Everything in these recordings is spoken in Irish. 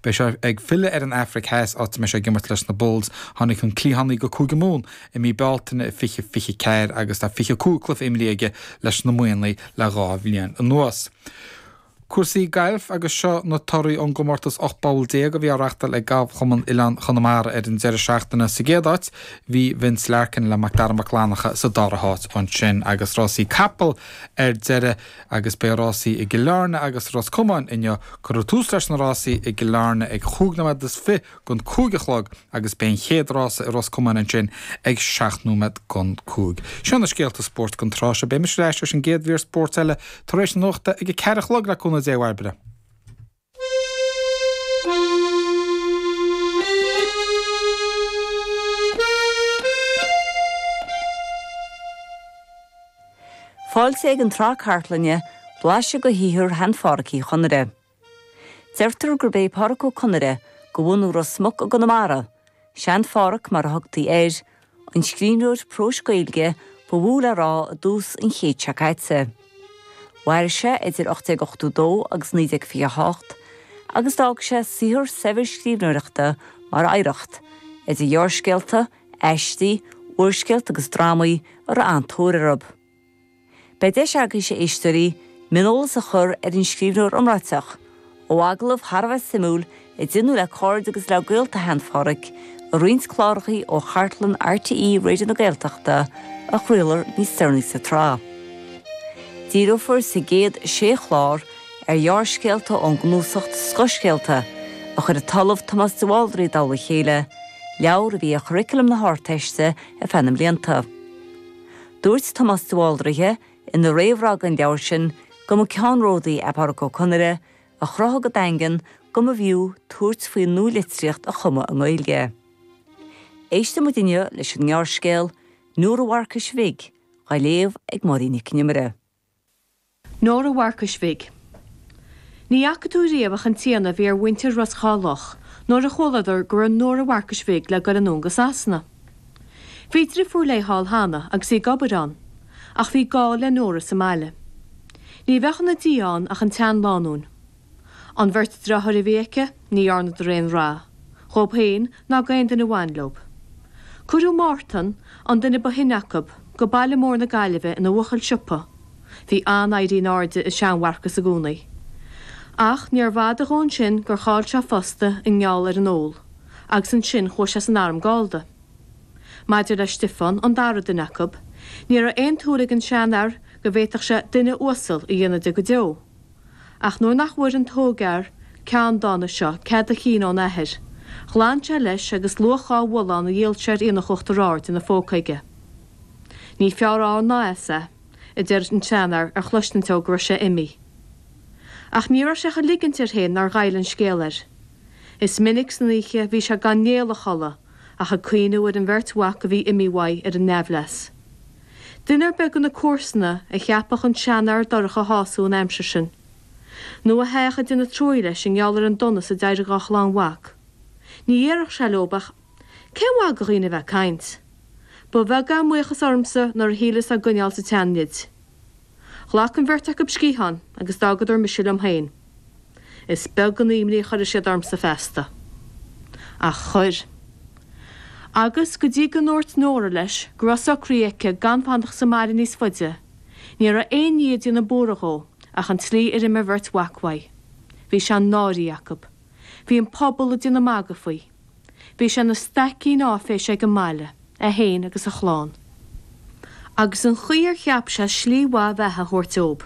Beidh sé ag filleadh ar an Afraic Theas, áit a mbeidh sé ag imirt leis na Bulls. Tháinig an cliathánaí go Cúige Mumhan i mí Bealtaine 2024 agus tá 25 cluiche imeartha aige leis na Muimhnigh le dhá bhliain anuas. Cúrsaí gailf agus seo na torthaí ón gcomórtas 18 bpoll a bhí á reáchtáil ag Galfchumann Oileáin Chonamara ar an deireadh seachtaine. Sa gcéad áit bhí Vince Larkin le Macdara Mac Fhlannacha sa dara háit ansin agus rásaí capall ar deireadh. Agus beidh rásaí i gCill Airne agus i Ros Comáin inniu. Cuireadh tús leis na rásaí i gCill Airne ag chúig nóiméad is fiche don cúig a chlog agus beidh an chéad rása i Ros Comáin ansin ag seacht nóiméad don cúig. Seo na scéalta spóirt don tráth seo. Beimid ar ais leis an gcéad mhír spóirt eile tar éis na nuachta ag a ceathair a chlog le cúnamh Dé, a Bhairbre. Fáilte ag an tsraith chartlainne 'Blaiseadh de shaothar Shean-Phádraic Uí Chonaire'. Deirtear gurb é Pádraic Ó Conaire, de bhunadh Ros Muc i gConamara, 'Sean-Phádraic' mar a thugtaí air, an scríbhneoir próis Gaeilge ba mhó le rá i dtús an chéid seo caite. Mhair sé idir 1882 agus 1928 agus d'fhág sé saothar saibhir scríbhneoireachta mar oidhreacht, idir ghearrscéalta, aistí, úrscéalta agus drámaí a raibh an-tóir orthu. Beidh deis agaibhse, a éisteoirí, mioneolas a chur ar an scríbhneoir iomráiteach, ó agallamh thar a bheith suimiúil a déanadh le cairde agus le gaolta Shean-Phádraic, i roinnt clárachaí ó chartlann RTÉ Raidió na Gaeltachta a chraolfar níos deireanaí sa tsraith. Díreofar sa gcéad sé chlár ar ghearrscéalta ón gcnuasacht Scothscéalta, a chuir an tOllamh Tomás de Bháldraithe i dtoll a chéile, leabhar a bhí ar churriculum na hArdteiste ar feadh na mblianta. Dúirt Tomás de Bháldraithe ina réamhrá don leabhar sin go mba ceannródaí é Pádraic Ó Conaire a chruthaigh go daingean go mb'fhiú tabhairt faoin nualitríocht a chumadh i nGaeilge. Éistfidh muid inniu leis an ngearrscéal 'Nóra Mharcais Bhig', á léamh ag Máirín Nic an Iomaire. Nóra Mharcais Bhig. Ní fhaca tú riamh ach an t-ionadh a bhí ar mhuintir Ros Dhá Loch nuair a chualadar go raibh Nóra Mharcais Bhig le goil anonn go Sasana. Bhí driofúr léi thall cheana agus í ag obair ann, ach bhí gá le Nóra sa mbaile. Ní bheadh ina diaidh ann ach an tseanlánúin. An bheirt dreatháir a bhí aici, ní dhearnadar aon rath, dhóib féin ná d'aon duine bhain leob. Cuireadh Mártan, an duine ba shine acu, go baile mór na Gaillimhe ina bhuachaill siopa. Bhí an-éirí in airde i sean-Mharcas i gcónaí. Ach níorbh fhada dhó ansin gur chaill sé a phosta i ngeall ar an ól, agus ansin chuaigh sé san arm Gallda. Maidir le Stiofán, an dara duine acu, ní raibh aon tsúil ag an seanfhear go bhféadfadh sé duine uasal a dhéanamh de go deo. Ach nuair nach bhfuair an t-ógfhear ceanndána seo cead a chinn óna athair, ghlan sé leis agus luach dhá bhullán a dhíol sé ar Aonach Uachtar Aird ina phóca aige. Ní fearr ann ná as é, a deir an seanfhear ar chloisint dó go raibh sé imithe. Ach ní raibh sé ach ag ligint air féin nár ghoill an scéal air. Is minic san oíche bhí sé gan néal a chodladh, ach ag cuimhniú ar an mbeirt mhac a bhí imithe uaidh ar a n-aimhleas. Duine ar bith de na comharsana a cheapadh an seanfhear dorcha a shású an aimsir sin. Nó a théadh ag déanamh truaighe leis i ngeall ar an donas a d'éirigh dá chlann mhac. Ní dhéarfadh sé leob ach, 'Cén mhaith do dhaoine a bheith ag caint? Ba bheag é a mbuíochas ormsa nuair a shíleas á gcoinneáil sa tsean-nid. Ghlac an bheirt acu sciathán agus d'fhágadar mise liom féin. Is beag an imní a chuirfidh siad ormsa feasta. Ach chuir. Agus, go dtí go ndúirt Nóra leis go raibh socraithe aici gan fanacht sa mbaile níos faide, ní raibh aon ní ag déanamh buartha dhó ach an tslí ar imigh a bheirt mhac uaidh. Bhí sé náirithe acu. Bhí an pobal ag déanamh magaidh faoi. Bhí sé ina staicín áiféise ag an mbaile, é féin agus a chlann. Agus an chaoi ar cheap sé slí mhaith bheatha a thabhairt dóibh,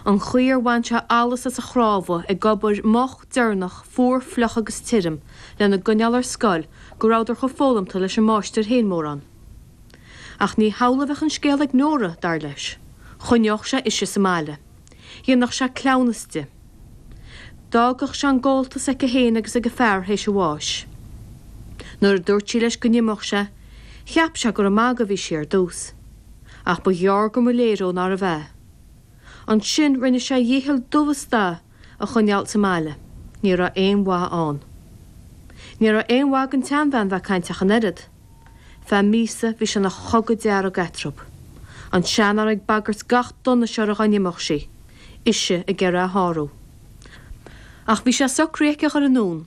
an chaoi ar bhain sé allas as a chnámha ag obair moch, deireanach, fuar, fliuch agus tirim lena gcoinneáil ar scoil go rabhadar chomh foghlamtha leis an máistir féin, mórán. Ach ní hamhlaidh a bheadh an scéal ag Nóra, dar leis. Choinneodh sé ise sa mbaile. Dhéanfadh sé cleamhnas di. D'fhágfadh sé an gabháltas aici féin agus ag a fear théis a bháis. Nuair a dúirt sí leis go n-imeodh sí, cheap sé gur ag magadh a bhí sí ar dtús. Ach ba ghearr go mba léir dó nárbh ea. Ansin rinne sé a dhícheall dubh is dath a coinneáil sa mbaile. Ní raibh aon mhaith ann. Ní raibh aon mhaith don tseanbhean bheith ag caint ach an oiread. Feadh míosa bhí sé ina chogadh dearg eatarthu, an seanfhear ag bagairt gach donais uirthi dá n-imeodh sí, ise ag iarraidh é a shárú. Ach bhí sé socraithe aici a dhul anonn